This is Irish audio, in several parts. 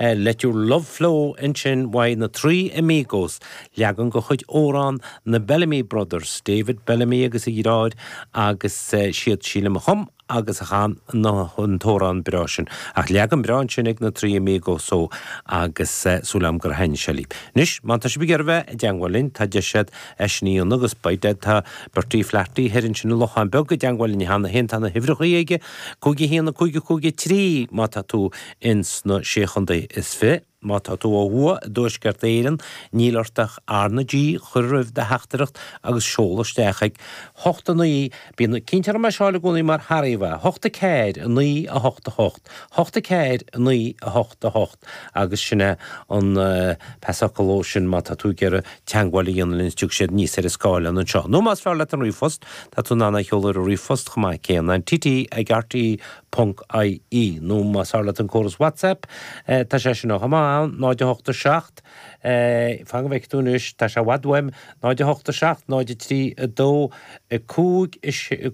Let Your Love Flow, Ansin ag na Trí Amigos, leagan de chuid amhrán na Bellamy Brothers, David Bellamy agus a dhriotháir, agus siad, sílim, a chum agus a chan an t-amhrán breá sin. Ach leagan breá ansin ag na Trí Amigos agus súil agam gur thaitnigh sé libh. Anois, má tá sibh ag iarraidh bheith i dteangmháil linn, tá deis agat é sin a dhéanamh agus by dead tá Bertie Flaherty thoir ansin i Lochán Beag i dteangmháil linn cheana féin, tá na huimhreachaí aige, 51553, má tá tú ins na Sé Chontae is Fiche. Má tá tú ó thuaidh i dTuaisceart Éireann, níl ort ach R na G a chur roimh do theachtaireacht agus seol isteach ag 8 9 Bíonn cinnt orm é a sheáil i gcónaí mar tharraíos, 8 4 9 8 8 8 4 9 8 8 agus sin é an fáth, ar ndóigh, sin má tá tú ag iarraidh teagmháil a dhéanamh linn is tiocfaidh siad aníos ar an scáileán anseo. Nó más fearr leat an ríomhphost, tá tú in ann é a sheoladh ar an ríomhphost chomh maith céanna, an tt ag rt. ie, nó más fearr leat an córas WhatsApp, tá sé sin chomh maith ann, 0887, fan go bhfeice tú anois, tá sé i bhfad uaim, 0887 03 2 5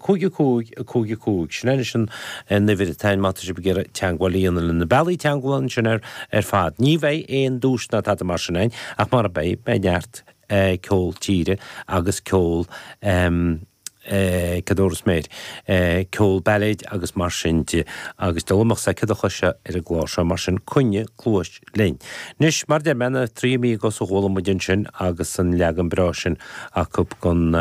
55 55. Sin anois an uimhir atá ann má tá sibh ag iarraidh teagmháil a dhéanamh linn. Na bealaí teagmhála ansin ar fad. Ní bheidh aon duais ná tada mar sin ann, ach mar a beidh neart ceol tíre agus ceol Ceadúnas, mar a déarfá, ceol, bailéid agus mar sin de, agus damhsa, cead a choise ar an gclár seo, mar sin coinnigh cluais linn. Anois, mar a deir mé, na Trí Amigos a chuala muid ansin agus an leagan breá sin acu den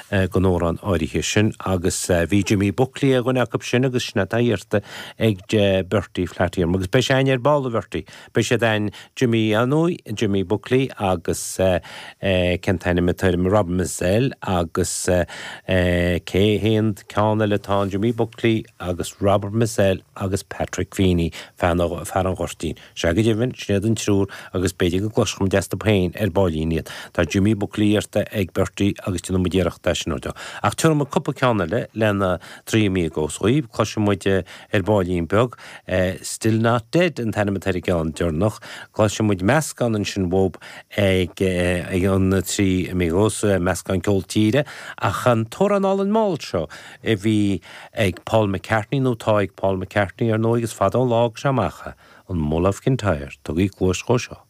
amhrán áirithe sin, agus bhí Jimmy Buckley duine acu sin agus sin atá iarrtha ag Bertie Flaherty orm, agus beidh sé againn ar ball, a Bhertie, Beidh sé againn, Jimí inniu, Jimí Buckley agus cén t-ainm atá air, Rob Mizell agus cé haon ceann eile atá ann, Jimí Buckley agus Robert Mizell agus Patrick Feeney, fear an Ghoirtín. Sea, go deimhin, sin iad an triúr agus b'fhéidir go gcloisfeadh muid astu féin ar baillín iad. Tá Jimí Buckley iarrtha ag Bertie agus déanfaidh muid iarracht é sin a dhéanamh. Ach tabharfaidh muid cúpla ceann eile le na Trí Amigos dhaoibh, cloisfidh muid ar baillín beag, Still not dead an t-ainm atá ar an gceann deireanach. Cloisfidh muid meascán ansin uathub ag na Trí Amigos, meascán ceol tíre, ach an t-amhrán álainn mall seo a bhí ag Paul McCartney, nó tá ag Paul McCartney ar ndóigh, is fada an lá tagtha amach, an Mull of Kintyre. Tugaigí cluais dhó seo.